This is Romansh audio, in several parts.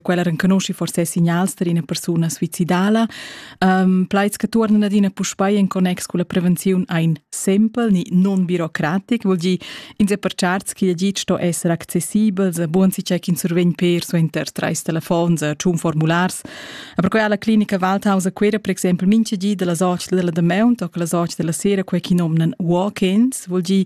quella renconusci forse signals per ina persuna suicidala. Um, plaids che tornano adina puspei in connex con la prevenzione ein simpel ni non birocratic, vuol dire ins è per charts che git sto essere accessibel, se buon si check in survegn per suenter treis telefons, tschun formulars. E per cui alla clinica Waldhaus a quera per esempio mince gi della soci della de mount o la soci della sera quei chi nomnan walk-ins, vuol dire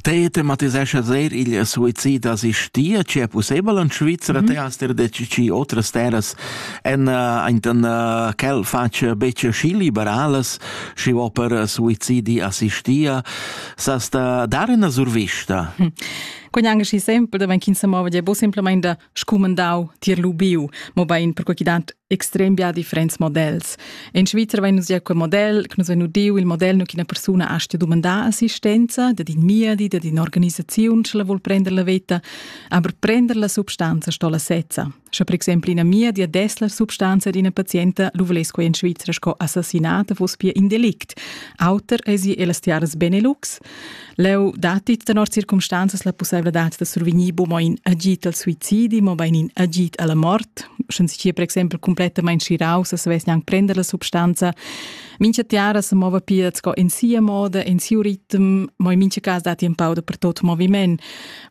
Te tematisescha sehr il suicid assistia, c'è possibel in Svizzera, mm -hmm. te hast dir detg ci otras terras en en quel faccia becce schi liberales, schi o per suicidi assistia, sast dar una survista. Hm. Quegn anche schi sempre, wenn kind se mova, è bo simplemente scumandau tier lubiu, mobein perquei chi dat extrem bia differents models. In Svizzer vein nus ja quel model, che nus vein udiu il model nu che una persona astia dumandar assistenza, dat in miedi, dat in organisaziun, ce la vuol prender la veta, aber prender la substanza sto la sezza. Sche per exempel ina miedi a des la substanza di una patienta lu voless quei in Svizzer sco assassinata fuss pia in delict. Auter esi e las tiaras Benelux, Leu datti tenor circumstanzas la pusseivladad da survegnir buca mo in agid al suicidi, mobein in agid alla mort. Sche si per exempel complettamain schiraus e savess gnanc prender la substanza, mincha tiara se mova pia sco in sia moda, in siu ritm, mo in mincha cas datti un pau da per tot moviment.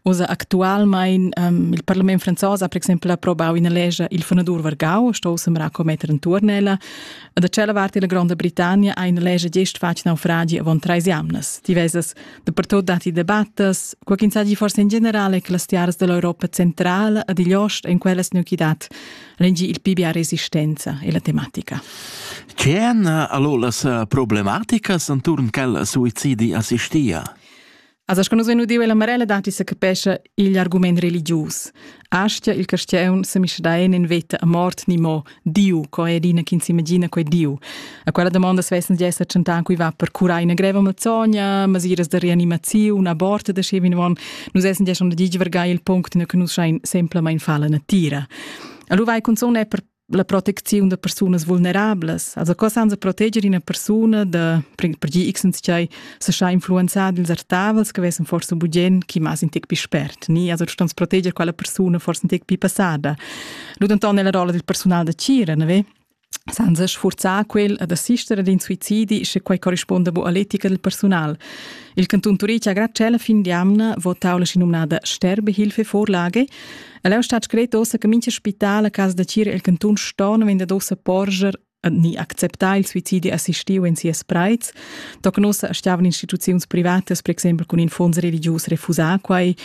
Osa actualmein um, il parlament franzos ha per exempel approbau ina lescha il fonadur vargau, sto semra commetter in turnella, Da tschella vart della Gronda Britannia ha ina lescha gest fatg naufragi avon treis jamnas. Diversas dapertut datti debattas, qua ch'insagi forse in generale che las tiaras dell'Europa centrala ad igl ost en quellas nuchidad rengi il pibia resistenza e la tematica. C'è allora las eh, problematiche intorno al suicidi assistia? Asa sco nus vein udiu ella Marella datti sa capescha igl argument religius. Astia il castiaun se misdaen en veta a mort ni mo Diu, co è dina chi s'imagina quei Diu. A quella domanda svessen di esser tschentan cui va per curar una greva mazzogna, masiras de reanimaziun, aborte de schevin von, nus essen di schon de givergai il punct in che nus schein semplamain falla natira. Allora vai cunzon è per la protecziun da persunas vulnerablas. Also co sans proteger una persona da per gi x sei se scha influenzar dils artavels che vessen forse bugen chi mas in tec più spert ni also du stans proteger quella persona forse un tec più passada. Lu denton nella rolla del personal da Cira, ne ve? Senza sforzar quel ad assistere ad in suicidi se quei corrisponda bu all'etica del personal. Il canton Turic ha grad cella fin di amna votau la sinominada Sterbehilfe-Vorlage, El è stato scretto ossa che mincha spital a casa da Cira el cantun Stone vende dossa porger ni acceptà il suicidi assistiu in sias preits. Tocnossa stiavan instituziuns privatas, per exempel con in fonds religius refusà quai.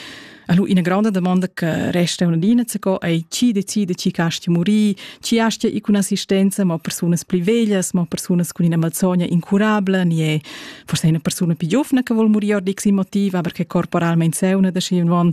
Allo ina grande domanda che resta una dina co è chi decide chi casti morì, chi astia i con assistenza, ma personas pli veglias, ma personas con ina malsogna incurabile, ni è forse una persona più giovane che vuol morire di motiv, aber che corporalmente seuna da schi un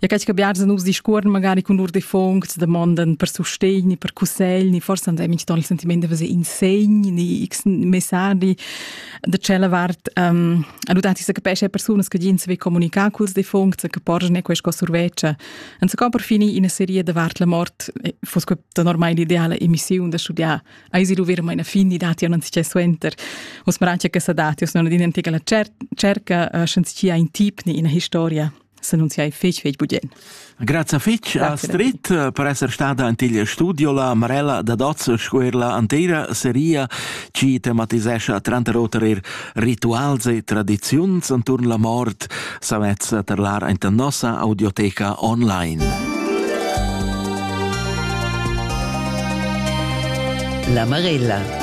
Ja catsch che biars nus discuorn magari cun lur defuncts, damondan per sustegn, per cussegl, forse han minch ton il sentiment da in segn, x messaggi da tschella vart. Um, a nutati se capesce persunas che gin se ve comunicar culs defuncts, che porgen ne questa surveccia. Und so kann per fini in una serie da vart la mort eh, fosse questa normale ideale emissione da studiare. Ai si dovere mai una fin di dati non si c'è suenter. Os maraccia che sa dati, os non adinantica la cer cerca, uh, eh, senza in tip ni in una historia. s'annunziai fetg fetg budien. Grazie fetg Astrid eh, per essere stata an il studio la Marella da Dotz sco er la antera seria ci tematisescha tranter oter er rituals e tradiziuns anturn la mort savez terlar anta nossa audioteca online. La Marella